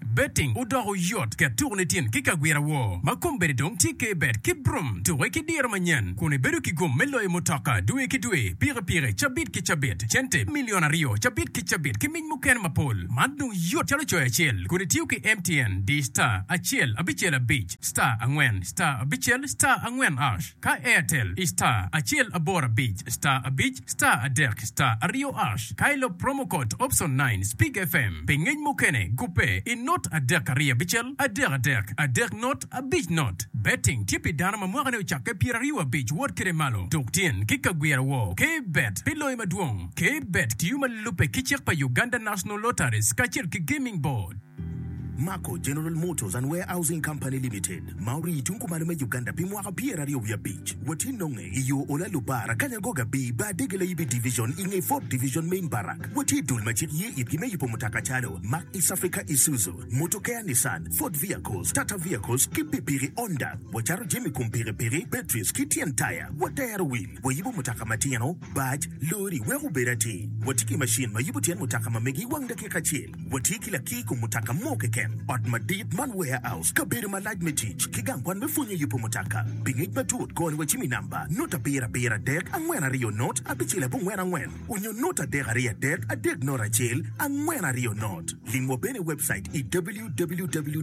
Betting odoko yot ket tuku nitin ki kagwira woo ma kombeddi dong tye ke bet ki brum tuke ki diro manyen kun ibedo ki gum me loyo mutoka dwe ki dwe, pikipiki, cabit ki cabit, cente milion aryo cabit ki cabit ki mic mukene mapol. Man dong yot calo coyo acel kun itiyo ki MTN di star acel abicel abic star angwen star abicel star angwen ash. Ka Airtel i star acel aboro abic star abic star adek star aryo ash ka ilop promo code option nine Speak FM pi ngec mukene gubbe i not adek ariyo abicel adek adek adek not abic not Betting tye pi dano ma mwakane ocakke pyera ryo abic wot kede malo tuk tin ki ka gwira woo Key Bet pi loyo madwong Key Bet tiyo ma lubbe ki cik pa Uganda National Lotteries kacel ki Gaming Board. Mako General Motors and Warehousing Company Limited ma orii tung kumalo me Uganda pi mwaka pyeraryo wiye abic watye nonge i yo Ola Lubara, Kanyangoga Bii Bar Dege Layibi Division i nge Ford Division Main Barrack. Watye dul ma cik ye itgi me yubo mutoka calo, Mack East Africa Isuzu, Motokea Nissan, Ford Vehicles, Tata Vehicles ki pikipiki Honda. Wacato jami kom pikipiki, batteries ki tyen taya. Watero wil, wayubo mutoka matino, Bac, lori, wek obed atir, watye ki macin ma yubo tyen mutoka ma mege i wang dakika acel. Watye ki lakir i kom mutoka mo keken, ot madit man warehouse, kabedo malac me tic, ki gang kwan me pwonyo yubo mutoka. Pi ngec matut, kony wacim i namba, not abiro abiro adek angwen aryo not abicel abongwen angwen, onyo not adek aryo adek adek not acel angwen aryo not. Limwa bene i webcait i www.maco.ug.